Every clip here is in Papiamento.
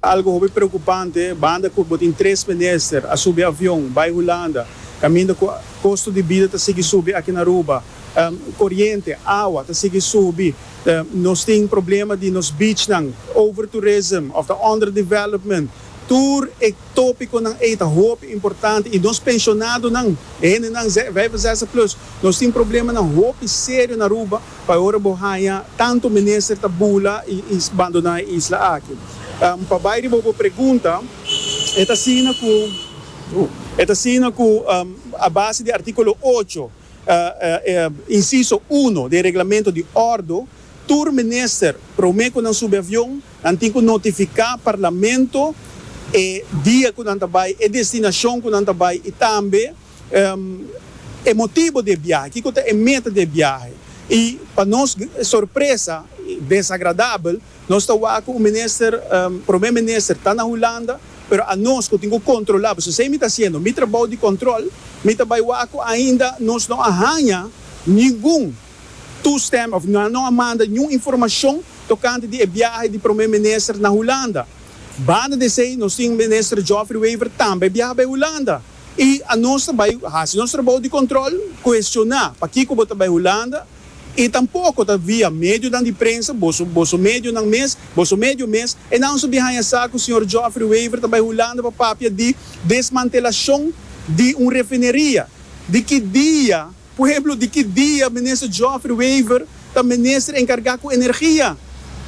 Algu hopi preokupante, banda ku bo tin tres menester a subi avion bai Hulanda, kaminda ku kosto di bida ta sigui subi aki na Aruba. Koriente, awa ta sigui subi. Nos tin problema di nos beachnan, overtourism òf ta underdevelopment. Tur e topikonan ei ta hopi importante i nos penshonadonan, e hendenan vijfenzestig plus, nos tin problemanan hopi serio na Aruba. Pa ora bo haña tantu mester ta bula i bandoná e isla aki. Pa bai riba bo pregunta, e ta asina ku, e ta asina ku a base di artíkulo ocho, insiso uno, di e Reglamento di Ordo, tur minister promé ku nan subi avion, nan tin ku notifiká Parlamento e dia ku nan ta bai, e destinashon ku nan ta bai i tambe, e motibo di e biahe, kiko ta e meta di e biahe. I pa nos sorpresa desagradabel, nos ta wak ku un minister, promé minister, ta na Hulanda, pero a nos ku tin ku kontrolá, pasobra esei mi ta hasiendo, mi trabou di kòntròl, mi ta bai wak ku ainda nos no a haña ningun toestemming òf nan no a manda ningun informashon tokante di e biahe di promé minister na Hulanda. Banda di esei nos tin Minister Geoffrey Wever tambe biaha bai Hulanda. I anos ta bai hasi nos trabou di kontrol, kuestioná pakiko bo ta bai Hulanda, i tampoko ta via medionan di prensa, boso boso medionan mes, boso medio mes, e naunso di haña sa ku señor Geoffrey Wever ta bai Hulanda pa papia di desmantelashon di un refineria, di ki dia Por ehemplo, di ki dia Minister Geoffrey Wever ta Minister encarga cu Energia?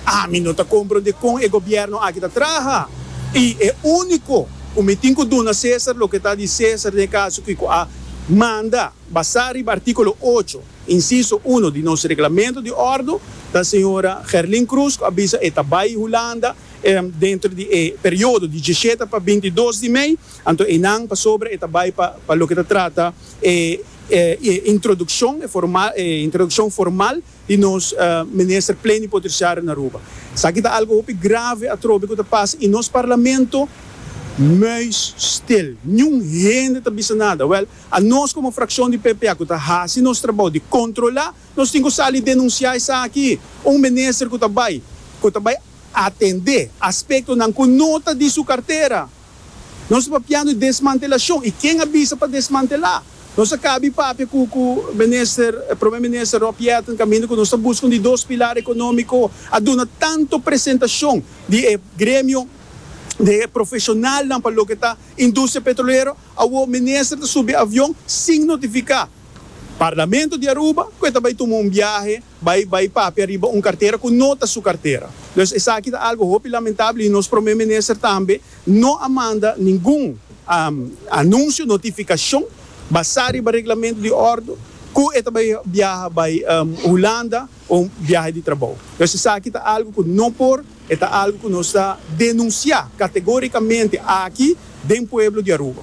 Ami no ta comprende con e Gobierno aki ta traha y e unico cu mi tin cu duna Cesar loke ta di Cesar n'e caso cu cu a manda basa riba articulo ocho, inciso uno di nos Reglamento di Ordo ta Sra. Gerlin Croes cu a bisa e ta bay Hulanda dentro di e periodo diecisiete pa bintidos di mei. Anto einan pasobra e ta bai pa pa loke ta trata e e introdukshon e forma e introdukshon formal di nos Minister Plenipotershario na Aruba. Esaki ta algo hopi grave atrobe ku ta pasa i nos Parlamento muis stil. Niun hende ta bisa nada. Wèl, a nos komo frakshon di PPA ku ta hasi nos trabou di kontrolá, nos tin ku sali denunsiá esaki. Un minister ku ta bai ku ta bai atendé aspektonan ku no ta di su kartera. Nos ta papia nu desmantelashon y ken a bisa pa desmantela. Nos a kabi papia cu cu minister Prome minister Rob Jetten caminda cu nos ta busca un di dos pilar economico a duna tanto presentacion di e gremio di e profesionalnan pa loke ta industria petrolero. Awo minister ta subi avion sin notifica Parlamento di Aruba cu e ta bay tuma un biahe. Bai bai papia riba un kartera ku no ta su kartera. Pues esaki ta algu hopi lamentabel i nos Prome Minister tambe no a manda ningun anunsio, notifikashon, basá riba reglamentu di ordu ku e ta bai biaha bai Hulanda pa un biaha di trabou. Pues esaki ta algu ku no por, e ta algu ku nos ta denunsiá kategórikamente aki den pueblo di Aruba.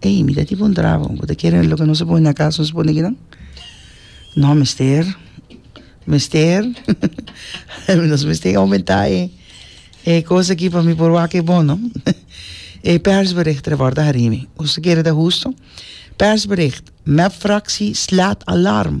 Ey, mi ta tipo un trabo, bo ta kere loke nos a pone na kas, nos a pone kinan? No, mester, mester nos mester oumentá e e kos aki pa mi por wak e bon, no? E persbericht tra bòrda harini, us ta kere ta hustu? Persbericht, MEPfractie slaat alarm.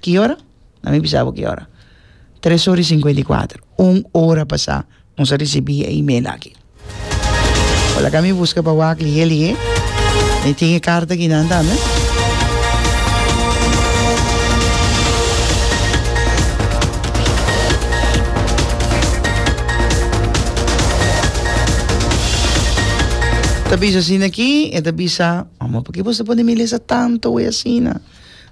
Ki ora? Dame bisa bo ki ora. Tres ora i sinkuenta i kuater. Un ora pasá nos a risibí e email aki. Por laka mi buska pa wak lihé lihé. Mi tin e karta akinan tambe. Ta bisa asina aki, e ta bisa, Mama, purkí bos ta pone mi lesa tantu awor asina?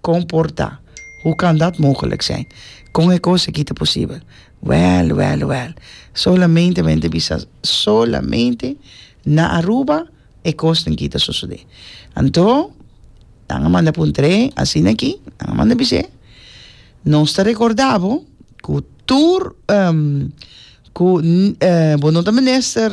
Comporta. Hoe kan dat mogelijk zijn? Con e cos aki ta posibel? Well, well, well. Solamente men ta bisa solamente na Aruba e cosnan aki ta sosode. Anto, nan a manda pa un tren asina aki, nan a manda bis'é, Nos ta recorda bo cu tur cu bo no ta mester.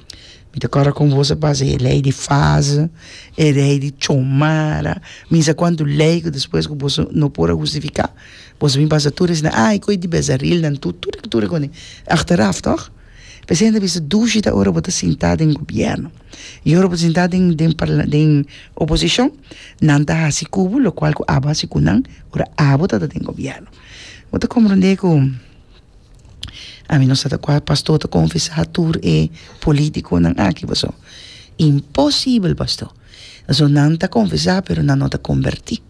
Mi ta kòrda kon vos a pasa e lei di faze, e lei di chomara, mi sa kuantu lei ku despues ku boso no por a hustifiká, boso a bin pasa tur asina, ai ku e di bezarilnan tur, tur e tur ekon e, achteraf tòg? P'esei ta bisa dushi ta ora bo ta sintá den gobièrnu i ora bo ta sintá den den parla den oposishon nan ta hasi ku bo lokual ku abo a hasi ku nan ora abo tabata den gobièrnu, bo ta komprondé ku ami no sa ta cual pastor ta confesa tur e politiconan aki paso imposible pastor paso nan ta confesa pero nan no ta converti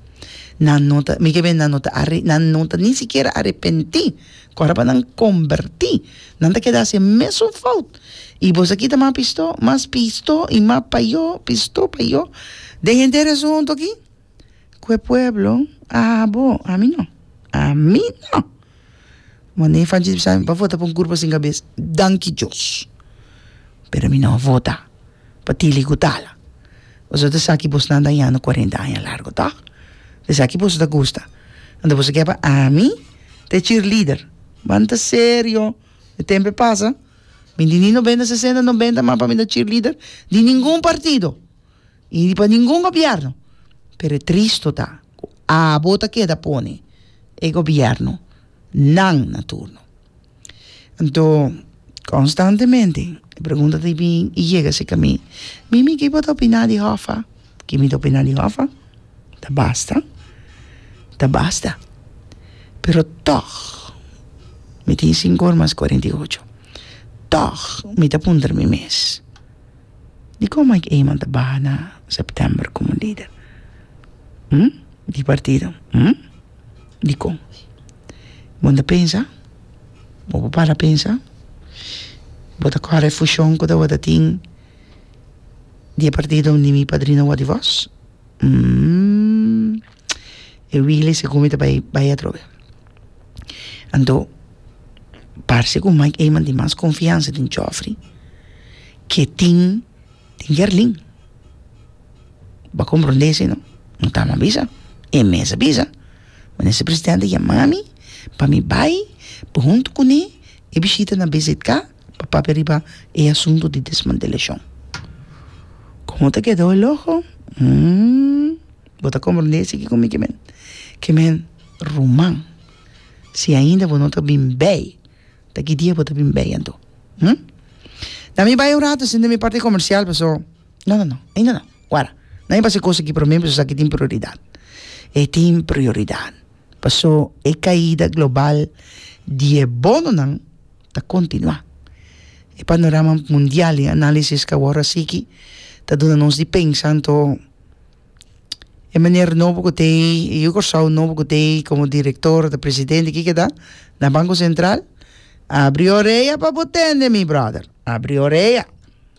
nan no ta mi ke benda nan no ta are nan no ta ni sikiera arepenti cu ora pa nan converti nan ta keda haci e mesun fout y boso a kita mas pisto mas pisto y mas payo pisto payo den henter a esun hondo aki ku e pueblo a haha bo, ami no, ami no, mane Fanchi di Bisaya mi pa vota pa un kurpa sin kabes, danki Dios, pero mi no a vota pa tila i gutala, boso ta sa ku boso nan dañando kuarenta aña largu to, esa ku boso ta gusta, anto boso ke pa ami ta e cheerleader, banta serio, e tempo a pasa, mi di ni nobenta sesenta nobenta mas pa mi ta cheerleader di ningun partido. Ni di pa ningun gobièrnu. Pero e tristu ta ku abo ta keda pone e gobièrnu nan na turno. Anto konstantemente e pregunta ta bin i yega serka mi, Mimi, ki bo ta opiná di Hòffa? Ki mi ta opiná di Hòffa? Ta basta, ta basta. Pero tòg mi tin sinku ora mas kuarenta i ocho, tòg mi ta puntra mi mes. Dikon Mike Eman ta baha na September komo lider di partido? Dikon? Bon ta pensa? Bo por para pensa? Bo ta kore e fushon ku tabata tin di e partido di mi padrino Wòdivos? e wili segun mi ta bai bai atrobe anto parse ku Mike Eman tin mas konfiansa den Chofri ke tin den Gerlin bo a komprondé esei no mi ta a bisa e mes a bisa minister presidente yama mi pa mi bai pa huntu kuné e bishita na BZK pa papia riba e asuntu di desmantelashon. Komo ta keda bo loho? Hmmm, bo ta komprendé esaki ku mi ke men? Ke men ruman. Si ainda bo no ta bin bei, ta ki dia bo ta bin bei anto? Hmmm. Na mi bai un ratu sin den mi parti komersial paso, no, no, no, ainda no, wara, na mi pasa e kosa ki promé paso esaki tin prioridat. E tin prioridat paso e kaida global di e bononan ta kontinuá. E panorama mundial di análisis ku a wòrdu a sigui ta duna nos di pensa, anto e manera nobo ku ta ei, e yu Kòrsou nobo ku ta ei komo direktor ota presidente ke keda na Banko Sentral, abri orea pa bo tende mi bròder, abri orea.